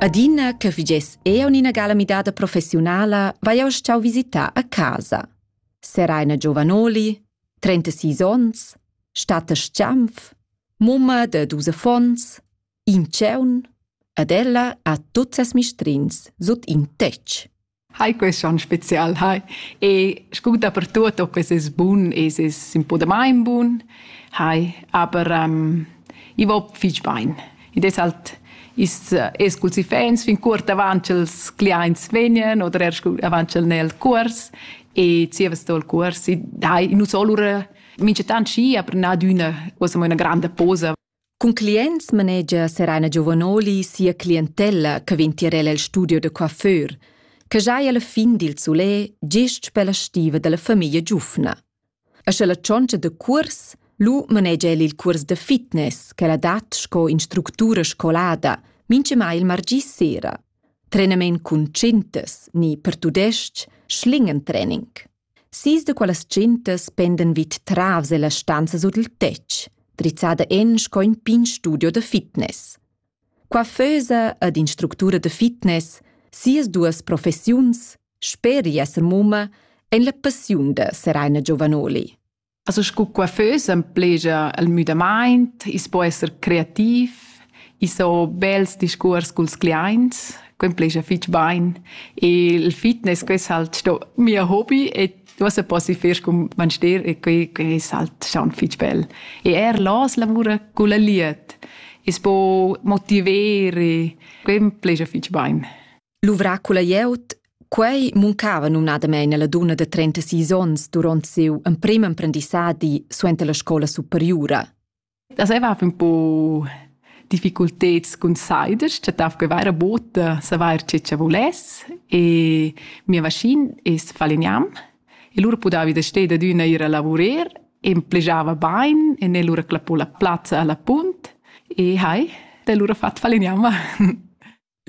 Adina che vigess eu ina gala midada professiunala, vai eu stau visitar a casa. Seraina Giovanoli, 36 ons, Statta Schiampf, mumma de dus affons, in tscheun, ad ella ha tuts ses mistrins sut in tetg. Hai quest onn spezial, hai. E scu dapertuot ho quest es bun, es es ün po damain bun, hai, aber ähm, i va fich bain. Id es halt ist, es culs iffaints fin cuort avant ch'els cliaints vegnan oder er scu avant ch'el n'è il cuors e zieva sto il cuors. Dai, nu so lura minchatant schi, aber na d'üna, quasi mo üna granda posa Cun clients manegia Serena Giovanoli sia clientella che vegn tier el el studio da coiffeur, che giai alla fin dil sulè gest per la stiva dalla famiglia giufna. E sche la tschontscha da cuors, lu manegia el il cuors da fitness che la dat sco instructura scolada, mincha mai il margì sera. Trenament cun tschintas ni per tudestg schlingen-training. Sis da quellas tschentas pendan vid travs ella stanza sut il tetg, drizzada en sco in pign studio da fitness. Qua fösa ed instructura da fitness sias duas professiuns, sper esser mumma, en la passiun da Seraina Giovanoli. Also sco coiffeus emplegia el müdamaint, i's po esser creativ, i's ho bels discuors culs cliaints, que emplegia fich bain. E il fitness, que es halt sto mia hobby e uossa poss i fer cun manster e que, que es halt staun fich bel. E eir las lavura culla lied. I's po motiver e que emplegia fich bain. Luvrà culla glieud Quei muncava numnadamein alla dunna de 36 onns duront siu emprim emprendissadi suenter la scola superiura. Das era un po difficulteds cun siders, chattav che vaira bota savar ce che voless e mia vaschin es faliniam e lura pudavi da steda d'una ir a lavurer e plegiava bain e ne lura clapò la plazza alla punt e hai, da lura fat faliniam.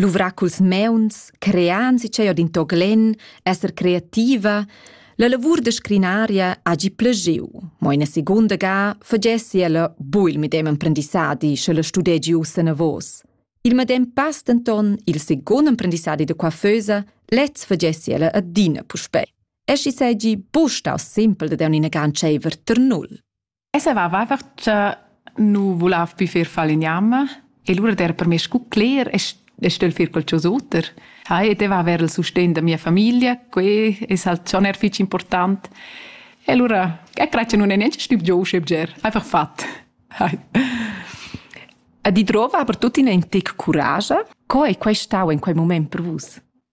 Luvrar culs meuns, crean si tgei od in to glen, esser creativa, la lavur da scrinaria hagi plegiu, mo ina secunda ga fagessi ella bu il medem emprendissadi, sche la studegi ussa navos. Il medem pass denton il secund emprendissadi da coiffeusa, lez fagessi ella adina puspei. E schi seigi bu staus simpel da dar ina gan tscheiver ter null. E saveva einfach cha nu vulav più fer faligname e lura der per me scu cler e stell fer qualchosa oter. Hai, e deva avair il sustegn da mia famiglia, que es halt schon er fich important. E lura, e crei che nun è neanche stüb giò usche bger, einfach fat. Hai. E di drova aber tuttina in tic curage. Co è quai stau in quel moment per vus?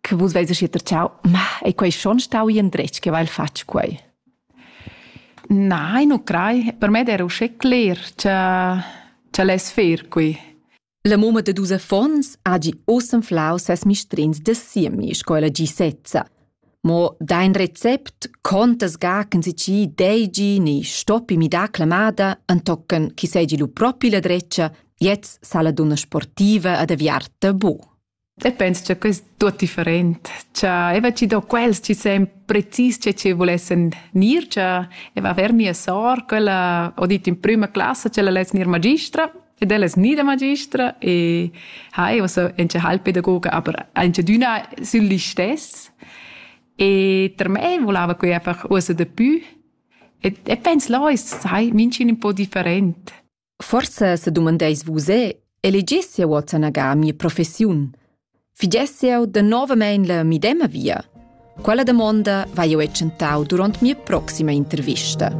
che vus veis schi terciau, ma ei quei schon stau in dretg che vai fatg quei? Nein, non crei. Per me era usce cler che ce les fer qui. La mumma de dus affons ha gi osanflau ses mistrins de siemi sco la gi sezza. Mo dein recept conta sgachen si ci deigi ni stoppi mi da clamada antocken chi segi lu propi la dreccia, jetzt sala dunna sportiva ad aviarta bu. E pens cha quest tuot different, cha eva chi do quels chi sain precis che chi vulessen gnir, cha eva aver mia sor, quella ho dit in prüma classa ch'ella less gnir magistra ed ella es gnida magistra e ha eu so auncha hal pedagoga, aber aunchadüna sül listess. E per me volava quei einfach uossa dapü. E, e pens là es, sai, minch'ün ün po different. Forsa sedumandeis vus er, elegies jeu ozenaga mia professiun? Figiess jeu danovamein la medema via? Quella damonda vai jeu tschentau duront mia proxima intervista.